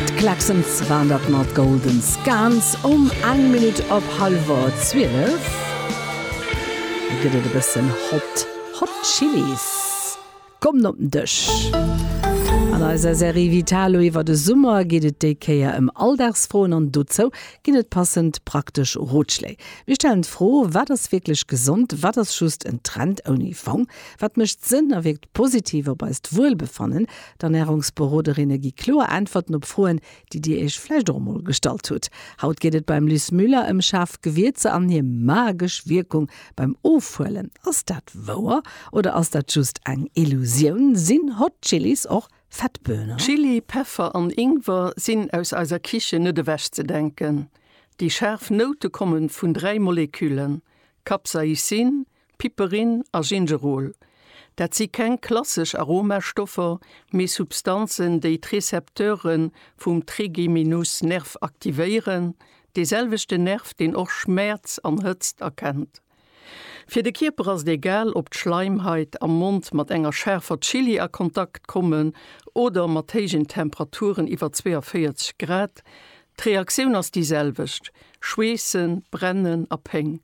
D'Klaxons waren dat mat Golden Scans um eng Minutt op hallwer 12. Lo gëtt et e bëssen hot. Hot Chili's kommen op den Dësch. An eiser Serie Vitalo iwwer de Summer geet et déi Kéier ëm Alldagsfroen an dozou ginn et passend praktesch Rotschléi. Mir stellen d'Fro, Wat ass wierklech gesond? Wat ass just en Trend ouni Fong? Wat mécht Sënn a wierkt positiv op eist Wuelbefannen? D'Ernärungsberoderinne gi kloer Äntwerten op Froen, déi Dir Iech vläicht och emol gestallt hutt. Haut geet et beim Liz Müller ëm schaarf Gewierzer an hir magesch Wierkung beim Ofhuelen. Ass dat wouer oder ass dat just eng Illusioun? Sinn Hot Chilis och Fettböhnen? Chili, Peffer an Ingwer sinn aus eiser Kichen net ewech ze denken. Déi schaarf Noute komme vun dräi Moleküllen, Capsaicin, Piperin a Gingerol, dat si keng klassesch Aromastoffer, mee Substanzen, déi d'Récepteure vum Trigeminusnerv aktivéieren, dee selwechten Nerv, deen och Schmäerz an Hëtzt erkennt. Fir de Kierper ass et egal, ob d'Schleimhait am Mond mat enger schaarfer Chilli a Kontakt kommen oder mat héijen Temperaturen iwwer 42 Grad, d'Reaktioun ass déi selwecht, Schweessen, Brennen a Péng.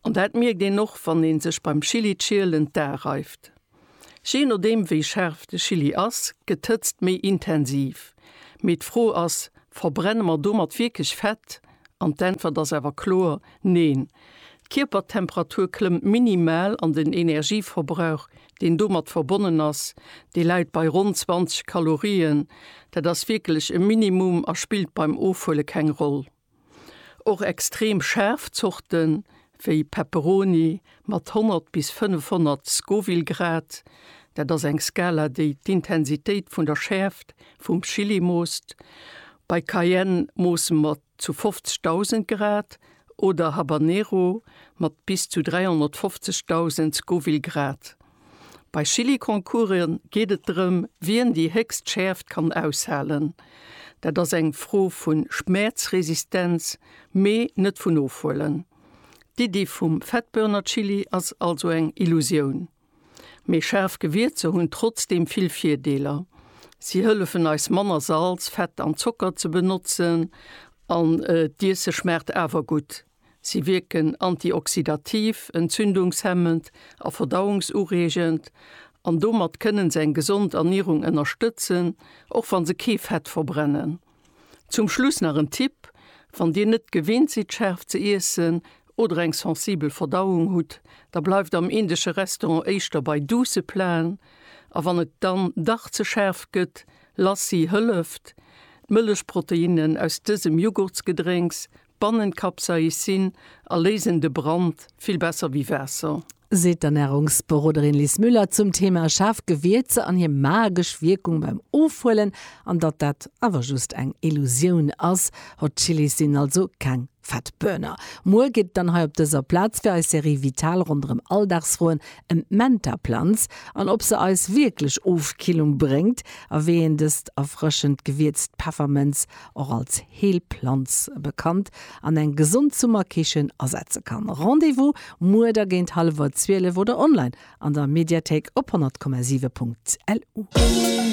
An dat mierkt een och wann een sech beim Chili Schielen d'Ae reift. Je nodeem wéi scharf de Chili ass, gëtt d'Hëtzt méi intensiv. Mee d'Fro ass, verbrenne mer domat wierklech Fett? An d'Äntwert ass awer kloer, Neen. D'Kierpertemperatur klëmmt minimal an den Energieverbrauch deen domat verbonnen ass, dee läit bei ronn 20 Kalorien. Dat ass wierklech e Minimum a spillt beim Ofhuele keng Roll. Och extrem schaarf Zorte wéi Pepperoni mat 100 bis 500 Scoville-Grad, dat ass eng Skala, déi d'Intensitéit vun der Schäerft vum Chili moosst, bei Cayenne moosse mer zu 50.000 Grad oder Habanero mat bis zu 350.000 Scoville-Grad. Bei Chilliconcourse geet et drëm, wien déi héchst Schäerft kann aushalen. Dat ass eng Fro vu Schmäerzresistenz, mee net vun Ofhuelen. D'Iddi vum Fettbörnerchilli ass also eng Illusioun. Mee schaarf Gewierzer hunn trotzdeem vill Virdeeler. Si hëllefen eis manner Salz, Fett an Zocker ze benotzen an d'Iesse schmaacht awer gutt. Si wierken antioxidativ, entzündungshemmend a verdauungsureegend an domat kënnen se eng gesond Ernierung ënnerstëtzen, och wann se kee Fett verbrennen. Zum Schluss nach en Tipp, Wann Dir net gewinnt sidd schaarf ze iessen oder eng sensibel Verdauung hutt, da bleift am indesche Restaurant éischter bei duusse Platen a wann et dann dach ze schaarf gëtt, Lassi hëlleft. D'Mëllechproteinnen aus dësem Jughurtsgedrénks Bannen Capsaicin a léisen de Brand vill besser wéi Waasser. Seet d'Ernärungsberoderin Liz Müller zum Thema schaarf Gewierzer an hir magesch Wierkung beim Ofhuelen. An datt dat awer just eng Illusioun ass, Hot Chillis sinn also keng Fat Burner. Muer geet et dann hei op dëser Plaz fir eis Serie Vital ronderëm Alldagsfroen ëm d'Mentaplanz an ob se eis wierklech Ofkillung bréngt a wéi een dëst erfrëschend gewierzt Peffermënz och als Heelplanz bekannt, an eng gesond Summerkichen asetze kann. Rendez-vous muer da géint hallef 12 oder online an der Mediathéik op 100,7.lu.